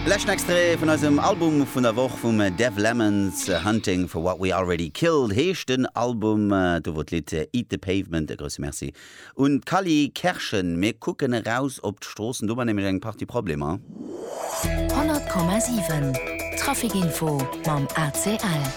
Leschten Extrait vun eisem Album vun der Woch vum Dev Lemons, Hunting for What We Already Killed heescht den Album, do wor d'Lidd Eat the Pavement. E grousse Merci un d'Kally Kerschen. Mir kucken eraus op d'Stroossen, do war nämlech eng Partie Problemer. 100,7 Traffic Info mam ACL.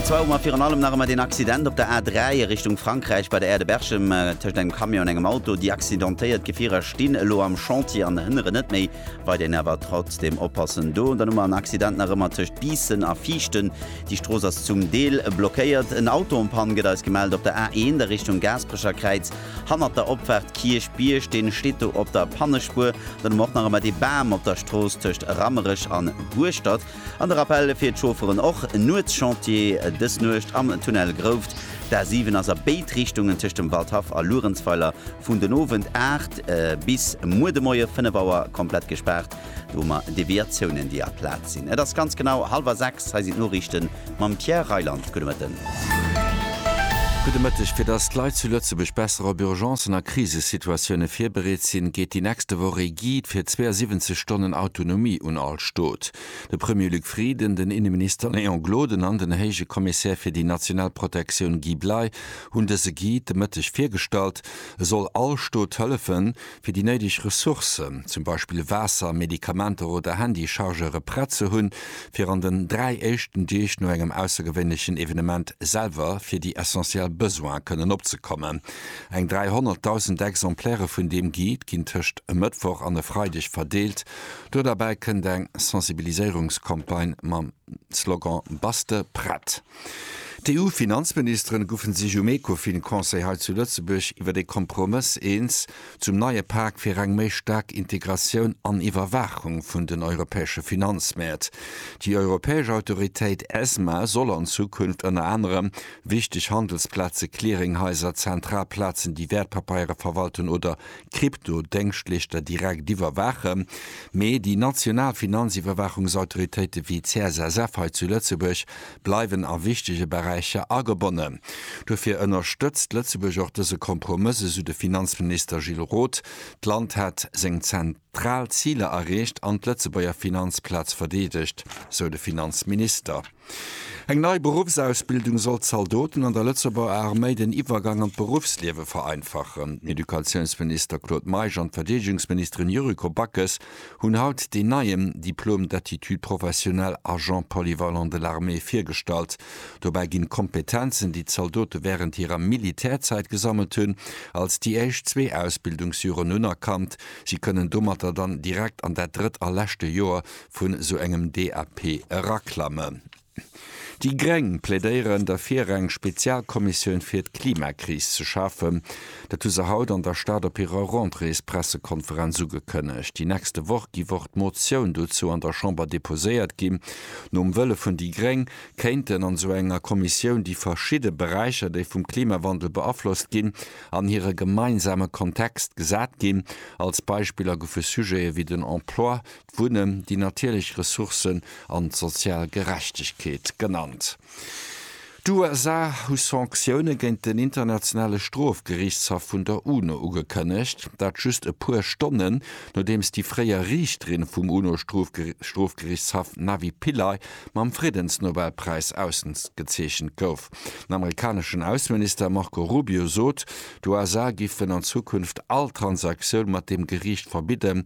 An zwar hu mer virun allem nach ëmmer deen Accident op der A3 a Richtung Frankräich bei der Aire de Berchem tëscht engem Camion an engem Auto. Déi accidentéiert Gefierer stinn elo am Chantier an hënneren net méi weit. Een awer trotzdeem oppassen do. Dann hu mer en Accident nach ëmmer tëscht Biissen a Viichten. Déi Strooss ass zum Deel blockéiert. En Auto en panne gëtt eis gemellt op der A1 a Richtung Gaasperecherkräiz hannert der Opfaart Kierchbierg. Deen steet do op der Pannespuer. Dann hu mer och nach ëmmer dee Bam op der Strooss tëscht Rammerech an Hueschtert. An de Rappell fir d'Chaufferen och, Nuetschantier dës Nuecht am Tunnel Grouft. D'A7 ass a béid Richtungen tëscht dem Waldhaff a Luerenzweiler vun den Owend 8 bis muer de Moie 5 Auer komplett gespaart. Do hu mer Deviatiounen, déi a Plaz sinn. Et ass ganz genau hallwer 6, hei sinn d'Noriichten. mam Pierre Reyland. Gudde Mëtten. Gudde Mëtteg. Fir datt d'Leit zu Lëtzebuerg besser op Urgencen a Krisesituatioune virbereet sinn, geet déi nächste Woch ee Guide fir 72 Stonnen Autonomie un all Stot. De Premier Luc Frieden, den Inneminister Léon Gloden an den Héije Kommissär fir déi national Protektioun Guy Bley hunn dëse Guide de Mëtteg virgestallt. E soll all Stot hëllefen, fir déi néideg Ressourcen, zum Beispill Waasser, Medikamenter oder Handychargeure prett ze hunn, fir an den dräi éischten Deeg no engem aussergewéinlechen Evenement selwer fir déi essentiell Besoine kënnen opzekommen. Eng 300.000 Exemplairë vun deem Guide ginn tëscht e Mëttwoch an e Freideg verdeelt. Do derbäi kënnt eng Sensibiliséierungscampagne mam. Slogan Bass de prett? D'EU-Finanzministeren goufen sech um Ecofin-Conseil hei zu Lëtzebuerg iwwer ee Kompromëss eens zum neie Pak fir eng méi staark Integratioun an Iwwerwaachung vun den europäesche Finanzmäert. Déi europäesch Autoritéit Esma soll an Zukunft ënner anerem wichteg Handelsplaze, Clearinghaiser, zentral Plazen, déi Wäertpapeiere verwalten oder d'Krypto-Déngschtleeschter direkt iwwerwaachen, mee déi national Finanziwwerwaachungsautoritéite wéi d'CSSF hei zu Lëtzebuerg bleiwen a wichtege Beräicher agebonnen. Dofir ënnerstëtzt Lëtzebuerg och dëse Kompromëss, esou de Finanzminister Gilles Roth. D'Land hätt seng zentral Ziler erreecht an d'Lëtzebuerger Finanzplaz verdeedegt, sou de Finanzminister. Eng nei Beruffsausbildung soll Zaldoten an der Lëtzebuerger Arméi den Iwwergang an d'Beruffsliewe vereinfachen. Den Educatiounsminister Claude Meisch an d'Verdeedegungsministerin Yuriko Backes hunn haut deen neien Diplôme d'aptitude professionnelle agent polyvalent de l'armée virgestallt. Dobäi ginn d'Kompetenzen, déi d'Zaldote wärend hirer Militärzäit gesammelt hunn, als déi éischt zwee Ausbildungsjoren unerkannt. Si kënnen domatter dann direkt an dat drëtt a leschte Joer vun esou engem DAP eraklammen. Déi gréng plädéieren derfir eng Spezialkommissioun fir d'Klimakris ze schafen. Dat hu se haut an der Stad op hirer Rentréespressekonferenz ugekënnegt. Déi nächste Woch giff och d'Motioun dozou an der Chamber deposéiert ginn. Nom Wëlle vun déi gréng kéinten an esou enger Kommissioun déi verschidde Beräicher déi vum Klimawandel beaflosst ginn an hire gemeinsame Kontext gesat ginn. Als Beispiller goufe Sujete wéi den Emploi, d'Wunnen, déi natierlech Ressourcen an d'sozial Gerechtegkeet genannt. D'USA hu Sanktioune géint den Internationale Strofgeriichtshaff vun der UNO ugekënnegt, dat just e puer Stonnen, nodeems déi fréier Riichterin vum UNO-Strofgeriichtshaff Navi Pillay mam Friddensnobelpräis ausgezeechent gouf. Den amerikaneschen Ausseminister Marco Rubio sot, d'USA géifen an Zukunft all Transaktioun mat deem Geriicht verbidden,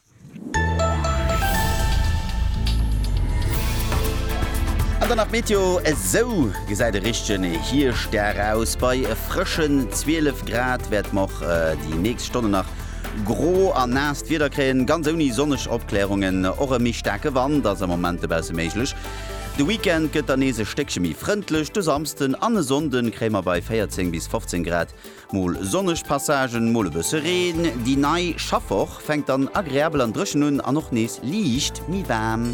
An dann nach d'Meteo, esou gesäit e richtegen Hierschtdag aus. Bei frëschen 12 Grad wäerte mer och déi nächst Stonne nach gro a naasst Wieder kréien, ganz ouni sonneg Opklärungen. Och e méi staarke Wand ass am Moment dobausse méiglech. De Weekend gëtt dann nees e Stéckche méi frëndlech, de Samsden an e Sonnde kréie mer bei 14 bis 15 Grad Mol sonneg Passagen, mol e bësse Reen. Déi nei Schaffwoch fänkt dann agreabel an dréchen un an och nees liicht méi waarm.